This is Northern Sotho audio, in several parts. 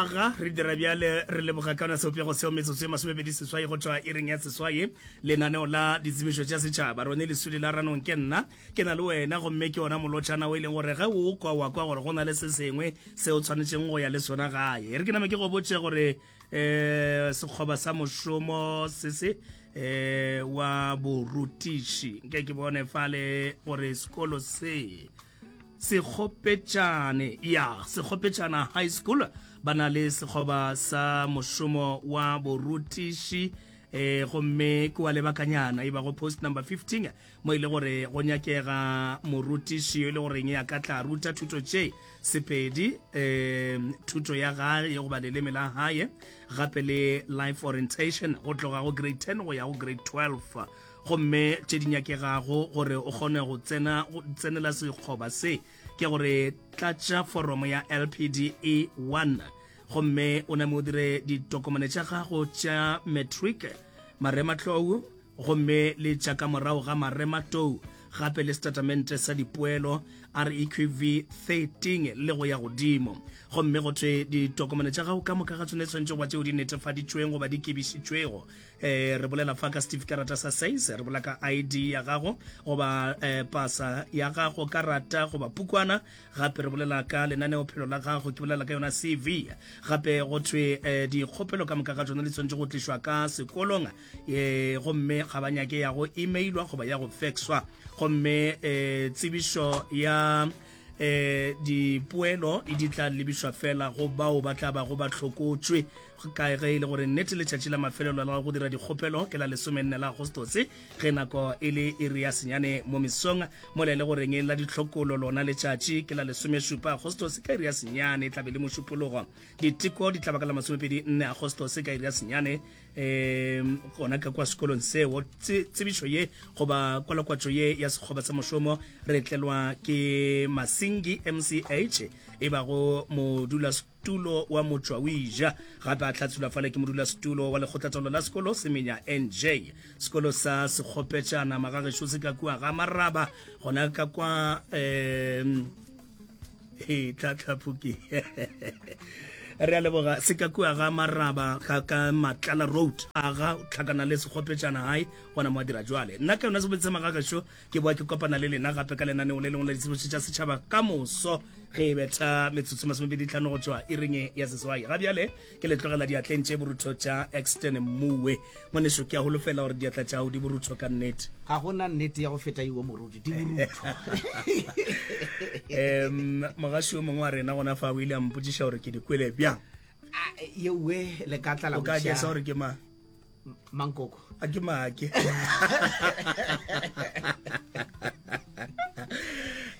aga re dira bjale re leboga ka ona seopego seo metsotso e masomebedi seswai go tšwa e reng ya seswai lenaneo la ditsebišo tša setšhaba rone lesudi la ranong ke nna ke na le wena gomme ke ona molotšhana o e leng gore ge o kwa wa kwa gore go na le se sengwe se o tshwanetseng go ya le sona gae re ke name ke go botse gore um sekgoba sa mošomo se se um wa borutiši nke ke bone fale gore sekolo se Sekgopetšane ya Sekgopetšana High School ba na le sekgoba sa mošomo wa borutiši e gomme ke wa lebakanyana e bago post number 15 mo e le gore go nyakega morutiši yo e le goreng ya ka tla ruta thuto tše sepedi um thuto ya gae ye goba leleme la gae gape le life orientation go tloga go grade 10 go ya go grade 12 gomme tše di nyakegago gore o kgone go tsena go tsenela sekgoba se ke gore tlatša foromo ya lpde 1 gomme o name o dire ditokomane tša gago tša matric marematlou gomme le tša ka morago ga marematou gape le setatamente sa dipoelo reqv 13 le go ya godimo gomme go thwe ditokomane tša gago ka moka ga tsone tshwanetse goba tšeo di netefaditšweng goba di kebišitšwego eh re bolela fa ka steve karata sa says re bola ka id ya gago goba eh pasa ya gago karata goba pukwana gape re bolela ka lenaneo phelo la gago ke bolela ka yona cv gape go thwe eh dikgopelo ka moka ga tsone le tshwanetse go tlišwa ka sekolong eh gomme ga ba nyake ya go emailwa goba ya go faxwa gomme eh tsebišo ya e dipoelo e di tla lebišwa fela go bao ba tla bago ba hlokotšwe ka ge e le gore nnete letšatši la mafelelo la go dira dikgopelo ke la lesomenne la agostose ge nako e le iri ya senyane mo mesong mola e le goreng la ditlhokolo lona letšatši ke la lesomešupa agostose ka iri ya senyane e tlabe le mošupologo diteko di tla ba ka la masomepedi nne agostose ka iri ya senyane um gona ka kwa sekolong seo tsebišo ye goba kwalakwatšo ye ya sekgoba sa mošomo re tlelwa ke masingi mch e bago modula setulo wa motswawija gape a tlhatshula fale ke modula setulo wa lekgotlatolo la sekolo semenya nj sekolo sa sekgopetšana magagešo se ka kua ga maraba gona ka kwa um e tlhatlhaphuki re a leboga se ka kua ga maraba ga ka matlala road a ga tlhakana le segopetšana gae gona mo a dira jwale nna ke yona sebedise magagaxo ke boa ke kopana le lena gape ka lenaneo le lengwe la ditshebetso tša setšhaba ka moso ge e betha metsotso masomebedi tlhano go tšwa iringe ya seswai ga bjale ke le tlogela diatleng tše borutho tša exton mmuwe ngwaneso ke a holofela gore diatla tšago di borutho ka nnete ga gona nnete ya go feta iwo moruti di borutho um mogaši o mongwe wa rena gona fa o ile a mpotsiša gore ke di kwele bjang ah, yewe le ka tlala o ka jesa gore ke mang mankoko a ke make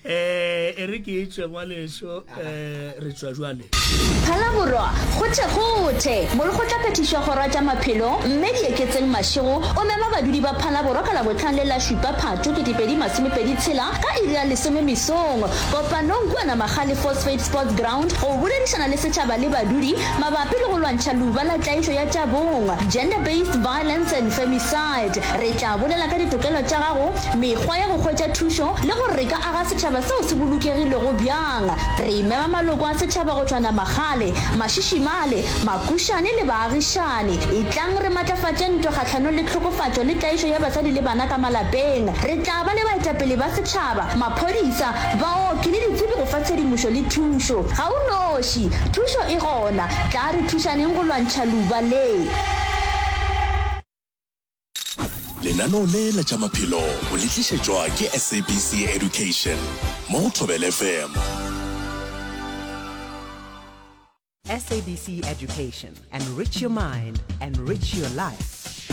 eh e re ke etswe ngwaleso eh re tswa jwale phala borwa gothe gothe mole go tla phethišwa gora tša maphelo mme di eketseng mašego o mema badudi ba phala borwa ka labotlhang le la šupa phatho ketepedi masomepedi tshela ka iri ya lesome mesong kopanong kuana magale phosphate sports ground go boledišana le setšhaba le badudi mabapi le go lwantšha luba la tlaišo ya tša bong, Gender Based Violence and Femicide. Re tla bolela ka ditokelo tša gago, mekgwa ya go hwetša thušo le gore re ka aga setšhaba seo se bolokegilego bjang. Re mema maloko a setšhaba go tšhwana magale, mašišimale, makušane le baagišani. Etlang re matlafatše ntwa kgahlanong le tlhokofatšo le tlaišo ya basadi le bana ka malapeng. Re tla ba le baetapele ba setšhaba, maphodisa, baoki le ditsebi go fa tshedimošo le thušo. Ga o noši. Thušo e gona. Tla re thušaneng go lwantšha luba le. Lenaneo le la tša maphelo o le tlišetšwa ke SABC Education mo go Thobela FM. SABC Education, enrich your mind, enrich your life.